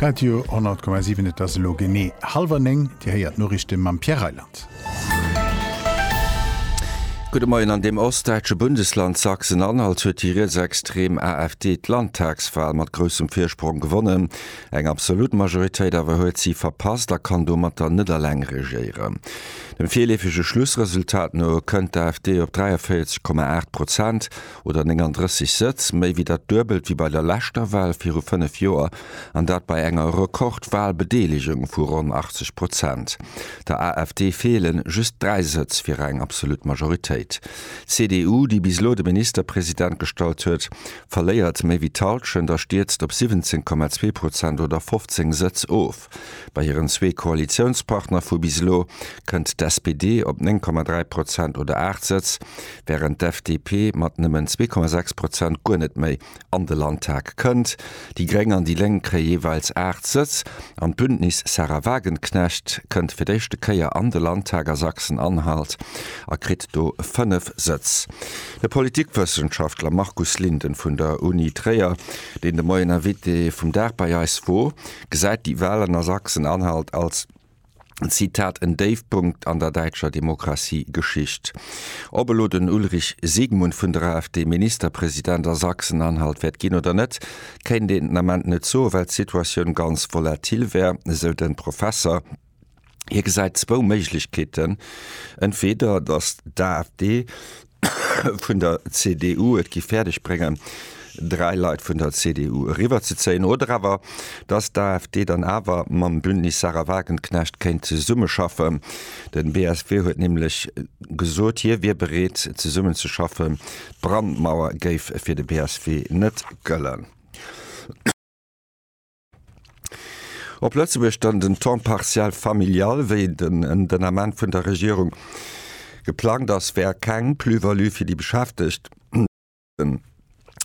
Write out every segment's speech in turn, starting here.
Radio 10,7 Et ass elo genee hallwer 9, Dir héiert d'Noriichte mam Pierre Reyland. Gudde Moien, An deem ostdäitsche Bundesland Sachsen-Anhalt huet déi rietsextrem AfD d'Landtagswal mat groussem Virsprong gewonnen. Eng absolut Majoritéit awer huet si verpasst a kann domatter net eleng regéieren. Dem virleefege Schlussresultat no kënnt d'AfD op 43,8 Prozent, oder 39 Sëtz, méi wéi dat Duebelt wéi bei der leschter Wal viru fënnef Joer, an dat bei enger Rekord-Walbedeelegung vu ronn 80 Prozent. Der AfD feelen just dräi Sëtz fir eng absolut Majoritéit. D'CDU, déi bis elo de Ministerpresident gestallt huet, verléiert méi wéi d'Hallschent a stierzt op 17,2 Prozent oder 15 Sëtz of. Knapp bei hiren zwee Koalitiounspartner vu bis elo kënnt d'SPD op 9,3 Prozent oder 8 Sëtz, wärend d'FDP mat nëmmen 2,6 Prozent guer net méi an de Landtag kënnt. Déi Gréng an déi Lénk kréie jeeweils 8 Sëtz an d'Bündnis Sahra Wagenknecht kënnt fir d'éischte Kéier an de Landtag a Sachsen-Anhalt a kritt do 5 Sëtz. De Politikwëssenschaftler Markus Linden vun der Uni Tréier, deen de Moien Invité vum Dag bei eis wor, gesäit déi Wahlen a Sachsen-Anhalt als, Zitat, en Déifpunkt an der däitscher Demokratiegeschicht. Ob elo den Ulrich Siegmund vun der AfD Ministerpresident a Sachsen-Anhalt wäert ginn oder net, kéint een den Ament net soen, well d'Situatioun ganz volatil wär, esou de Professer. Hie gesäit zwou Méiglechkeeten, entweeder datt d'AfD vun der CDU et géif fäerdeg bréngen, dräi Leit vun der CDU eriwwerzezéien, oder awer datt d'AfD dann awer mam Bündnis Sarah Wagenknecht kéint zesummeschaffen. Den BSW huet nämlech gesot, hie wier bereet zesummen ze schaffen. D'Brandmauer géif fir de BSW net gëllen. Op Lëtzebuerg dann den Temps partiel familial, wéi den den Ament vun der Regierung geplangt ass, wär keng Plus-value fir déi Beschäftegt. Den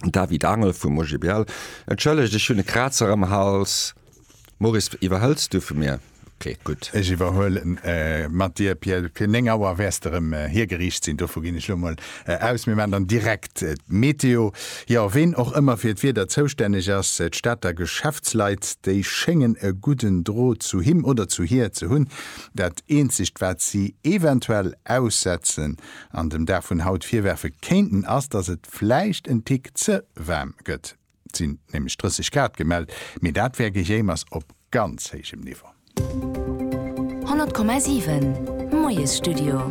David Angel vum OGBL, Entschëllegt, ech hunn e Krazer am Hals. Maurice, iwwerhëls du vu mir? Kléet gutt. Ech iwwerhuele mat dir, Pierre. Fir 9 Auer wäers de erëm hiergeriicht sinn. Dovu ginn ech elo mol aus. Mir maachen dann direkt d'Meteo. Jo, ween och ëmmer fir d'Wieder zoustänneg ass, d'Stater Geschäftsleit, déi schéngen e gudden Drot zu him oder zu hir ze hunn. Dat eenzegt, wat si eventuell aussetzen an dem Dag vun haut virwerfe kéinten, ass, dass et vläicht en Tick ze waarm gëtt. Et sinn nämlech 30 Grad gemellt, mee dat wär Gejéimers op ganz héijem Niveau. 100,7 Moiesstudio.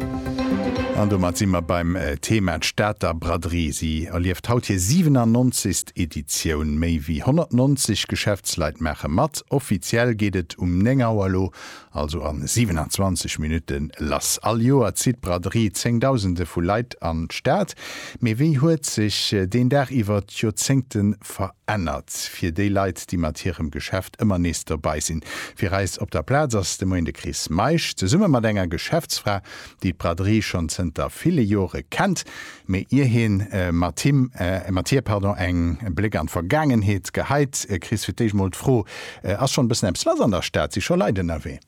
An domat si mer beim Thema, d'Stater Braderie. Si erlieft haut hir 97. Editioun. Méi wéi 190 Geschäftsleit maache mat. Offiziell geet et um 9 Auer elo also an 27 Minuten lass. All Joer zitt d'Braderie zéngdausende vu Leit an d'Stad. Mee wéi huet sech deen Dag iwwer d'Joerzéngte verännert? Fir déi Leit, déi mat hirem Geschäft ëmmer nees dobei sinn. Fir eis op der Plaz ass de Moien de Chris Meisch, zesumme mat enger Geschäftsfra, déi d'Braderie schonn zënter ville Jore kennt, mee ier hie mat him, mat hir, pardon, eng Bléck an d'Vergaangenheet geheit, kriss fir d'éischt mol d'Fro, Ass schonn e bëssen eppes lass an der Stad? Si scho Leit ënnerwee?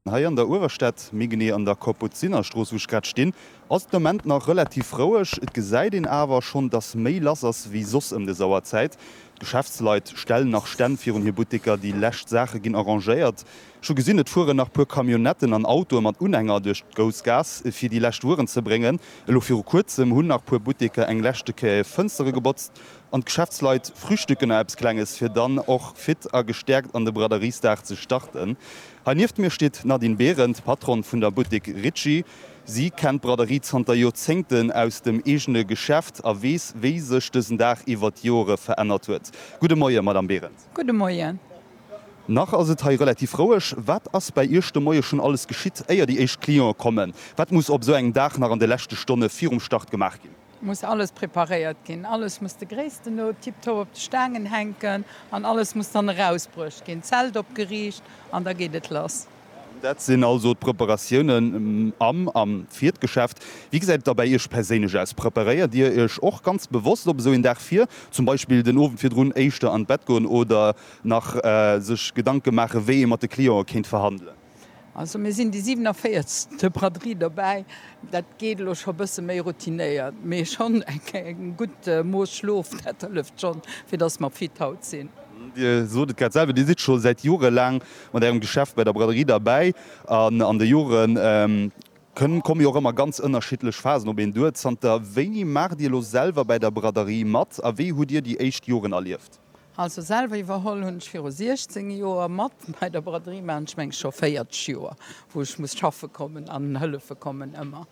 Hei an der Uewerstad, méi genee an der Kapuzinerstrooss, wou ech grad stinn, ass et de Moment nach relativ roueg. Et gesäit een awer schonn, dass méi lass ass wéi soss ëm des Auerzäit. D'Geschäftsleit stellen nach Stänn virun hir Butteker, déi lescht Saache ginn arrangéiert, Ech hu gesinn, et fueren nach puer Camionnetten an Autoe mat Unhänger duerch d'Grouss Gaass, fir déi lescht Wueren ze bréngen. Elo viru Kuerzem hunn nach puer Butteker eng leschte Kéier Fënstere gebotzt an d'Geschäftsleit frühstücken nach eppes Klenges, fir dann och fit a gestäerkt an de Braderiesdag ze starten. Hei nieft mir steet d'Nadine Behrendt, Patronne vun der Buttek Ritchie. Si kennt d'Braderie zanter Joerzéngten aus dem eegene Geschäft a weess, wéi sech dësen Dag iwwert d'Joere verännert huet. Gudde Moie, Madame Behrendt. Gudde Moie. Nach ass et hei relativ roueg. Wat ass bäi Iech de Moie schonn alles geschitt, éier déi éischt Cliente kommen? Wat muss op esou engem Dag nach an de leschte Stonne virum Start gemaach ginn? Muss alles preparéiert ginn, alles muss de Gréissten no tiptop op de Staangen hänken an alles muss dann erausbruecht ginn, Zelt opgeriicht an da geet et lass. Dat sinn also d'Preparatiounen am a fir d'Geschäft. Wéi gesäit et da bäi Iech perséinlech aus? Preparéiert Dir Iech och ganz bewosst op esou een Dag vir, zum Beispill den Owend virdrun éischter an d'Bett goen oder nach sech Gedanke maachen, wéi ee mat de Cliente kéint verhandelen? Also mir sinn déi 47. Braderie dobäi. Dat geet elo scho e bësse méi routinéiert, mee schonn e gutt Mooss Schlof, dat hëlleft schonn, fir datt mer fit haut sinn. Dir sot et grad selwer, Dir sidd scho säit Jore laang Mat Ärem Geschäft bei der Braderie derbäi an an de Joren kënn, komme jo och ëmmer ganz ënnerschiddlech Phasen op een duer. Zanter wéini maacht Dir elo selwer bei der Braderie mat a wéi hutt Dir déi éischt Joren erlieft? Also selwer iwwerholl hunn ech viru 16 Joer. Mat bei der Braderie maachen ech mengs scho 40 Joer, wou ech muss schaffe kommen an hëllefe kommen. Ëmmer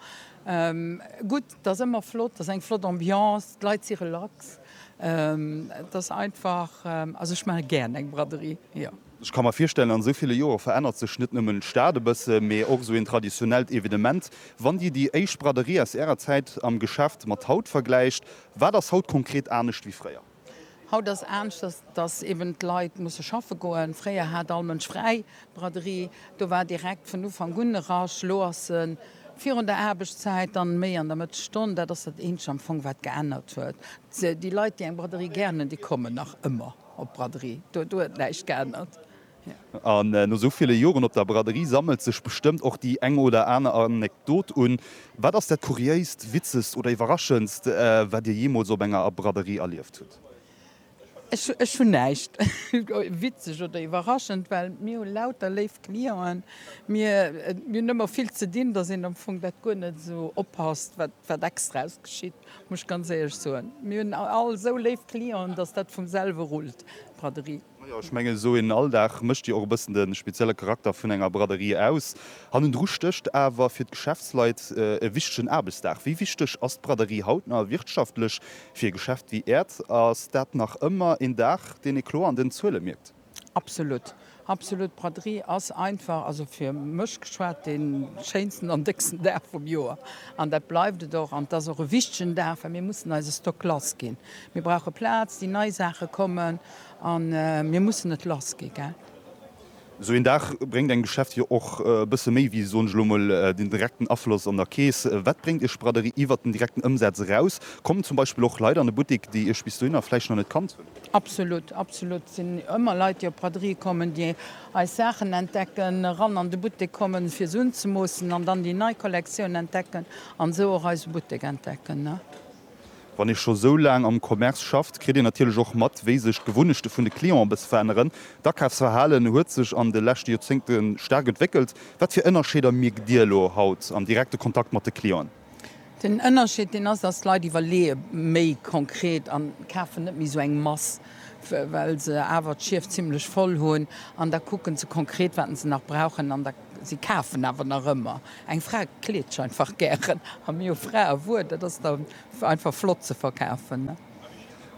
gutt, et ass ëmmer flott, et ass eng flott Ambiance, d'Leit si relax. Et ass einfach, also ech maache gären eng Braderie, jo. Ech ka mer virstellen, an esou ville Joer verännert sech net nëmmen d'Stad e bësse, mee och esou een traditionellt Evenement. Wann Dir déi éischt Braderie aus Ärer Zäit am Geschäft mat haut vergläicht, wat ass haut konkret anescht wéi fréier? Haut ass anescht, dass eben d'Leit musse schaffe goen. Fréier hat all Mënsch fräi. D'Braderie, do war direkt vun Ufank un e Rush. Elo ass se virun der Aarbechtszäit, dann méi an der Mëttesstonn. Dat ass dat eenzegt am Fong, wat geännert huet. Déi Leit, déi eng Braderie gären hunn, déi kommen nach ëmmer. Op Braderie, do huet näischt geännert. An no sou ville Joren op der Braderie sammelt sech bestëmmt och déi eng oder aner Anekdot un. Wat ass dat Kuriéist, Witzegst oder Iwwerraschendst, wat Dir jeemools op enger Braderie erlieft hutt? Ech hunn näischt Witzeg oder Iwwerraschend, well mir hu lauter léif Clienten. Mir hunn ëmmer vill ze dinn, dass een am Fong dat guer net esou oppasst, wat extraes geschitt. Muss ech ganz éierlech soen. Mir hunn all esou léif Clienten, dass dat vum selwe rullt, d'Braderie. Majo, ech mengen, esou een Alldag mécht jo och e bëssen de spezielle Charakter vun enger Braderie aus. Hannendru stécht awer fir d'Geschäftsleit e wichtegen Aarbechtsdag. Wéi wichteg ass d'Braderie haut nach wirtschaftlech fir e Geschäft wéi Äert? Ass dat nach ëmmer een Dag, deen ee kloer an den Zuele mierkt? Absolut, absolut. D'Braderie ass einfach, also fir mech geschwat, dee schéinsten an décksten Dag vum Joer. An dat bleift et och. An et ass och e wichtegen Dag, well mir mussen eise Stock lass ginn. Mir brauche Plaz, déi nei Saache kommen a mir mussen et lass gi gell. Esou een Dag bréngt engem Geschäft jo och e bësse méi wéi, soen ech elo emol, den direkten Afloss an der Keess. Wat bréngt Iech d'Braderie iwwert den direkten Ëmsaz eraus? Kommen zum Beispill och Leit an de Buttik, déi Iech bis dohinner vläicht nach net kannt hunn? Absolut, absolut. Sinn ëmmer Leit, déi op d'Braderie kommen, déi eis Saachen entdecken, eran an de Buttek kommen, fir se unzemoossen an dann déi nei Kollektioun entdecken an esou och eise Buttek entdecken. Wann ee scho sou laang am Commerce schafft, kritt een natierlech och mat, wéi sech d'Gewunnechte vun de Clienten e bësse veränneren. D'Akafsverhalen huet sech an de leschte Joerzéngte staark entwéckelt. Wat fir Ënnerscheeder mierkt Dir elo haut am direkte Kontakt mat de Clienten? Den Ënnerscheed deen ass, dass d'Leit iwwerleeë méi konkret an kafen net méi esou eng Mass, well se awer d'Schief zimmlech voll hunn. An da kucken se konkret, wat se nach brauchen an da, si kafen awer nach ëmmer. Eng Fra kleet sech einfach gären a mir hu Fraewuer, dat ass da einfach flott ze verkafen.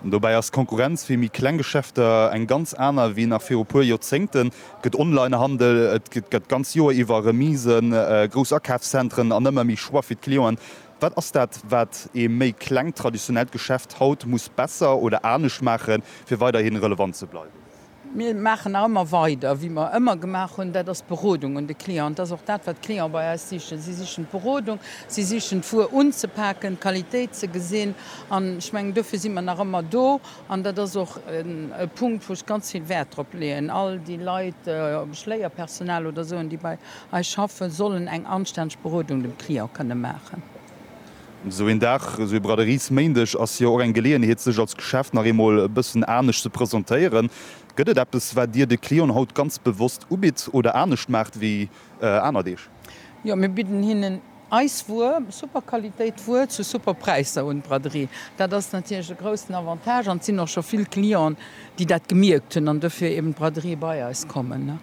Dobäi ass d'Konkurrenz fir méi kleng Geschäfter eng ganz aner wéi nach viru puer Joerzéngten. Et gëtt Onlinehandel, et gëtt d'ganz Joer iwwer Remisen, grouss Akafszentren an ëmmer méi Choix fir d'Clienten. Wat ass dat, wat ee méi klengt traditionellt Geschäft haut muss besser oder anescht maachen, fir weiderhi relevant ze bleiwen? Mir maachen nach ëmmer weider, wéi mer ëmmer gemaach hunn, dat ass d'Berodung un de Client. Dat ass och dat, wat d'Clienten bei eis sichen. Si sichen d'Berodung, si sichen d'Wuer unzepaken, d'Qualitéit ze gesinn. An ech mengen, dofir si mer nach ëmmer do. An dat ass och e Punkt, wou ech ganz vill Wäert drop leeën. All déi Leit, ob ech Léierpersonal oder esou hunn, déi bei eis schaffen, sollen eng anstänneg Berodung dem Client kënne maachen. Esou een Dag, esou ee Braderies-Méindeg ass jo och eng Geleeënheet, sech als Geschäft nach eemol e bëssen anescht ze presentéieren. Gëtt et eppes, wat Dir de Clienten haut ganz bewosst ubitt oder anescht maacht wéi aner Deeg? Jo, mir bidden hinnen eis Wuer, super Qualitéit Wuer zu super Präisser un. D'Braderie, dat ass natierlech e groussen Avantage an et sinn och scho vill Clienten, déi dat gemierkt hunn an dofir eeben d'Braderie bei eis kommen.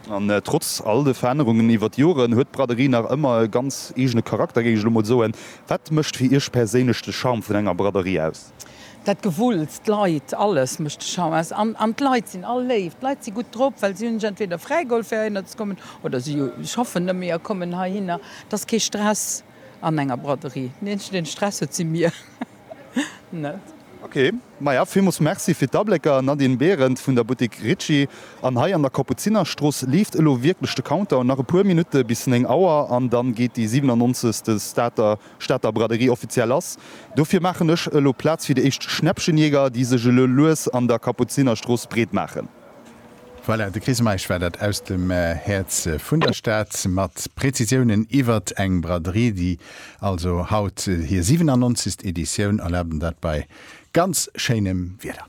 An trotz all de Verännerungen iwwer d'Joren huet d'Braderie nach ëmmer e ganz eegene Charakter, géing ech elo mol soen. Wat mécht fir Iech perséinlech de Charme vun enger Braderie aus? Dat Gewulls, d'Leit, alles mécht de Charme aus. An d'Leit sinn all léif. D'Leit si gutt drop, well si hunn sech entweder fräigeholl fir heihinner ze kommen oder si schaffen nëmme a kommen heihinner. Et ass kee Stress an enger Braderie. Deen eenzegen, deen Stress huet, si mir. net. Ok, maja villmols merci fir d'Ablécker. Nadine Behrendt vun der Boutique Ritchie an hei an der Kapuzinerstrooss leeft elo wierklech de Countdown. Nach e puer Minutte bis 9 Auer an dann geet déi 97. Stater Stater Braderie offiziell ass. Dofir maachen ech elo Plaz fir déi éischt Schnäppchenjäger, déi sech elo lues an der Kapuzinerstrooss breet maachen. Voilà, de Chris Meisch war dat aus dem Häerz vun der Stad mat Prezisiounen iwwert eng Braderie, déi also haut hir 97. Editioun erlaabt, an dat bei ganz schéinem Wieder.